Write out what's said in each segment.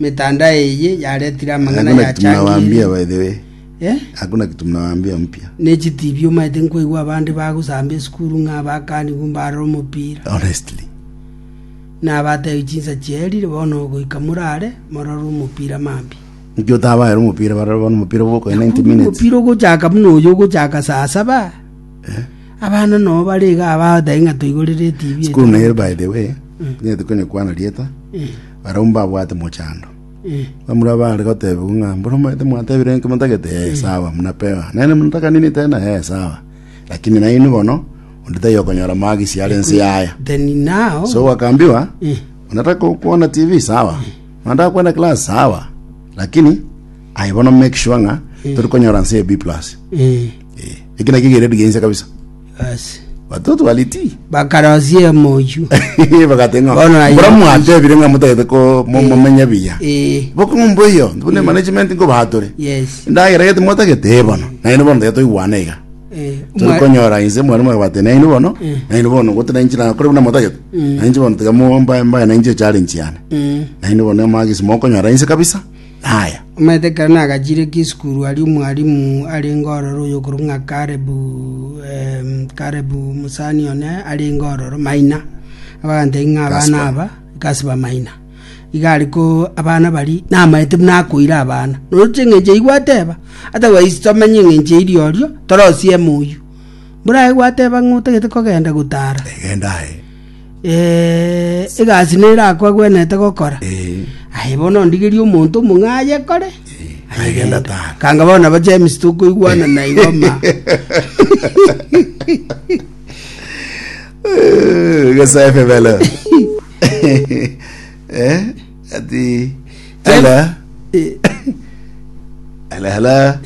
Metanda eye yaretire amang'ana Hakuna kitu mnawaambia yachangirie, by the way. eh, Hakuna kitu mnawaambia mpya. ne chitibi omaete nkoigwa abande bagosamba esukuru ng'a abakanigwa mbarore omopira Honestly. na abatebi chinsa chierire bono goika morare morore omopira mambi Nki otabaera omopira barore bono omopira bwokoe 90 minutes. omopira ogochaka buna oyo ogochaka saa saba abana noo bare iga abatebi ng'a toigorere etibi School nail by the way. Nyetu kwenye kwana rieta. Barabwo mbabwate mochando. Bamura baare gotebigwa ng'a, Mboro mbaete mwatebire enke motagete? Ee, sawa, buna peo. Naende motakanini tena? Ee, sawa. Lakini nainwe bono, onde taiyo okonyora amagisi are inse y'aya. Then now, So gwakaambiwa, Eh. unataka kuona TV? Sawa. Unataka kwenda class? Sawa. Lakini aye bono make sure ng'a turi konyora nse ya B+. eh, Eh, eki nakio geredi geinse kabisa. Ase. Watoto waliti. Bakarosia emoyio. Bagate ng'a. Bono aye- Mbura mwatebire ng'a motagete ko mo- Eh. momenya biya. Eh, Bokong'umbu eyo, bune management ngo batore. yes. Ndagera gete mwatagete bono. Naino bono tagete igwana iga. Eh, Turi mwa- konyora inse mwari mwabate naino bono. Mm. Naino bono gote na inchira kore buna motagete. Mm. Nainche bono tiga mo mbaye mbaye na inche challenge yana. Mm. Naino bono magisi mokonyora inse kabisa. naya. Omanyete ekero nagachiire Kisukuru aria omwalimu arenge ororo oyokorokwa ng'a Karebu, em, Karebu mosani one arenge ororo maina, abagantebia ng'a abana Gaspar. aba Gaspar maina. Iga ari ko abana bari namaete buna akoira abana. Nonya ching'encho eyio gwateba, ata gwaisi tomenye eng'encho eiri orio, torosieme oyio. Mburae gwateba ng'a otagete kogenda gotara. Egenda aye. Eh, egasi nere akwagwenete gokora Eh, aye bono ndigerie omonto omong'a ayekore eh, agenda tara. kanga bono ba james tokoigwana na igoma Eh, Gesaefe belo. Eh, ati ala Eh, ala ala.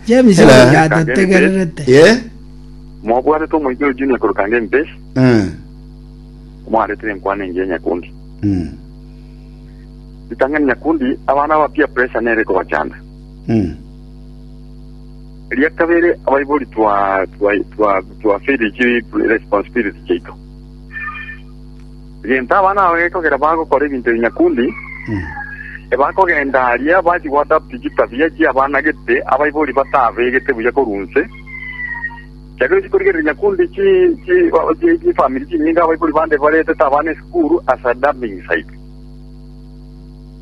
james Hello. agatategererete Ye? Mobwanete omoika o Junia korwa Kangemi Base, Eh. omwaretire enkwana engiya Nyakundi. Mm. Ritang'ani Nyakundi, abana ba peer pressure nere ekobachanda. Mm. Eria kabere abaibori twa twa twa twa feel chi responsibility chiaito. Gento abana abo gekogera bagokora ebinto bi Nyakundi, Mm. ebakogenda aria bachi gwadapt chitabia chia abana gete abaibori batabegete buya korunse Ekiagera ochia korigereria nyakundi chi chi o- chi- chifamiri chinyinge abaibori bande baretete abana esukuru ase a dumping site.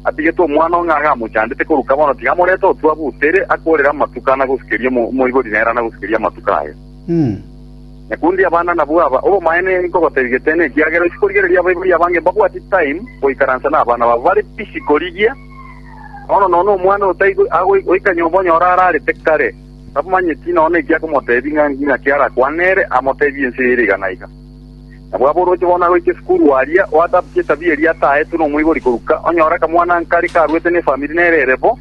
Atigete omwana oo ng'a gamochandete koruka bono tiga amorete otwa butere akorere amatuko anagosukeria omo- omoibori nere anagosukeria amatuko aye. Mm. Nyakundi abana nabwo aba, obomaene nkogotebi gete nekiagera ochia korigereria abaibori abange mbabwati time goikaransa nabana babo bare busy korigia bono nonya omwana otaigo ago- oika nyomba onyore ararete kare. Tamanyeti nonya eki akomoteebia ng'a inaki arakwane ere, amoteebie ense eye ere iga na iga. Nabo ab'oroche bono agoika esukuru aria, oatabutie etabia eria ataetwe nomoibori koruka, onyore akamwana-nkare karuete nefamiri nere ere bo,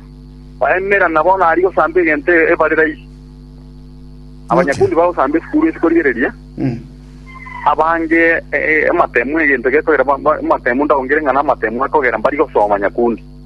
baemerana bono aria gosamba egento ebare raisi. Abanyakundi bagosamba esukuru isiko rigereria, abange amatemu egento gekogera amatemu ndaongire ng'a namatemu akogera mbari gosoma nyakundi.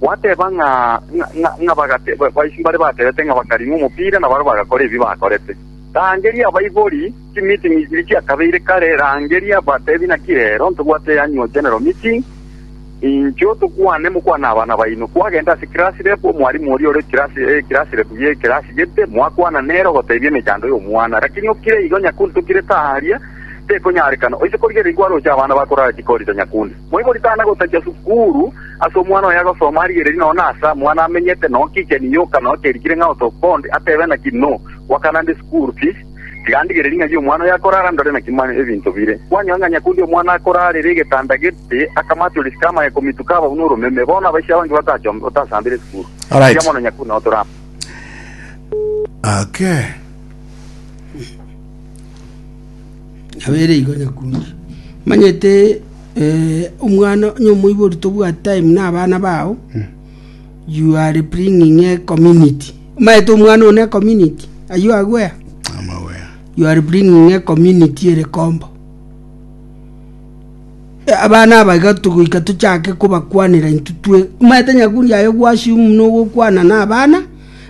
Gwateba ng'a mbare baterete ng'a bakaring'a omopira, na barabwo bagakora ebi bakorete. Rangeria abaibori, chimiting ichiri chiakabeire kare, rangeria batebi naki rero ntobwate Annual General Meeting, inchuo tokwane mokwane abana baino. Kwagenda ase class rep, omwalimu oria ore class rep ye class gete, mwakwana nere ogotebia emechando y'omwana. Rakini okire igo nyakundi tokire taaria, tekonyarekana. Oise korigereria kwaroche abana bakorara chikorito nyakundi. Moibori tana gotacha sukuru ase omwana oye agosoma arigererie nonya nase amwana amenyete nonya kicheni yoka nonya kerikire ng'a out of bond atebe naki no gwakana nde sukuru fees tiga ndigererie ng'ai omwana oyo akorara ndore naki mane ebinto bire kwanyora ng'a nyakundi omwana akorarera egetanda gete akamache ore sika amaye komituka abau noromeme bono abaisia abange batachom batasambire sukuru Alright. Eria mono nyakundi nonya tora Okay. Nabere igo nyakunde. Omanyete omwana onye omoibori tobwati time na abana bao you are bringing a community omanyete omwana one community are you aware you are bringing a community ere kombo abana aba iga togoika tochake kobakwanera intwe twe omanyete nyakundi aye ogwasure muna ogokwana na abana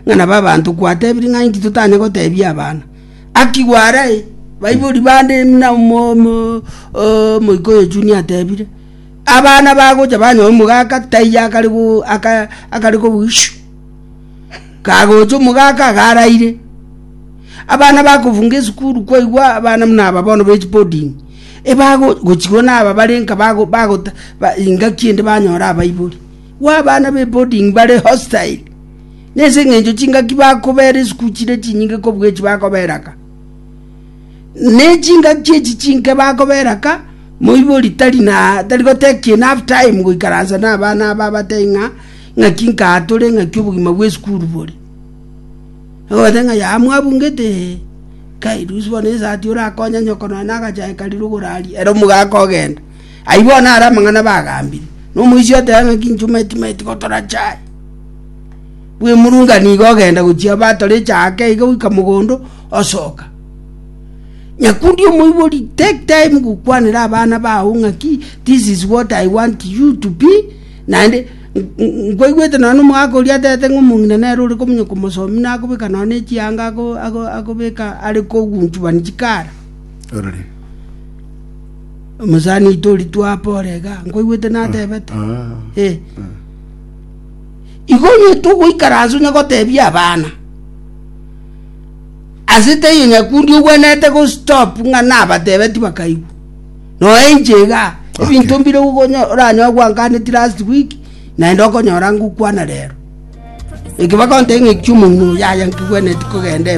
ng'a nabo abanto kwatebirie ng'a inki totanye gotebia abana Akigwa arai, baibori bande buna omoika oye Junia atebire, Abana bagocha banyore omogaka, taiyo akare kobua ishu. Kagocha omogaka iga araire. Abana bakofunga esukuru kwaigwa abana buna aba bono be chiboding, gochigwa naba bare nka bagota ingaki ende banyora abaibori. Igo abana be boding bare hostile. Nense engencho chingaki bakobeera isiko chire chinyinge kobua echi bakobeera aka? Ne chingaki echi chinke bakobeera aka, moibori tari goteba ekiina half time goikaransa nabana aba abatebi ng'a ng'aki nkaa tore ng'aki obogima bwe esukuru bore. Ogoteba ng'a yaya mwabungete ee, kai rusia bono esati orakonya nyoko nonya na agachae karia rogoro aria, ere omogaka ogenda. Ayio bono are amang'ana bagambire, na omoisia oteba ng'a chinchuma eti timanyeti gotora chai. Bw'emurunga nigo ogenda gochia abatora echaaka iga goika mogondo osoka. Nyakundi omoibori take time gokwanera abana bao ng'a ki this is what I want you to be naende nkwaigwete nonya omogaka oria atete ng'a omong'ina nere ore komonya komosomi nakobeka nonya ne chianga akobeka are kogunchubani chikara. Omosaani oito oritwa ape orega, nkoigwete natebete, ee, igo onye togoikara ase onye gotebia abana ase teiyo nyakundi ogwenerete gostop ng'a nabatebeti bakaigwa noe inche iga ebinto mbire okonyo oranyoe gwanganeti last week naende okonyora ngokwana rero eke bagontebia ng'a ekiomong'ina oyo yaya nkigwenereti kogenda ime.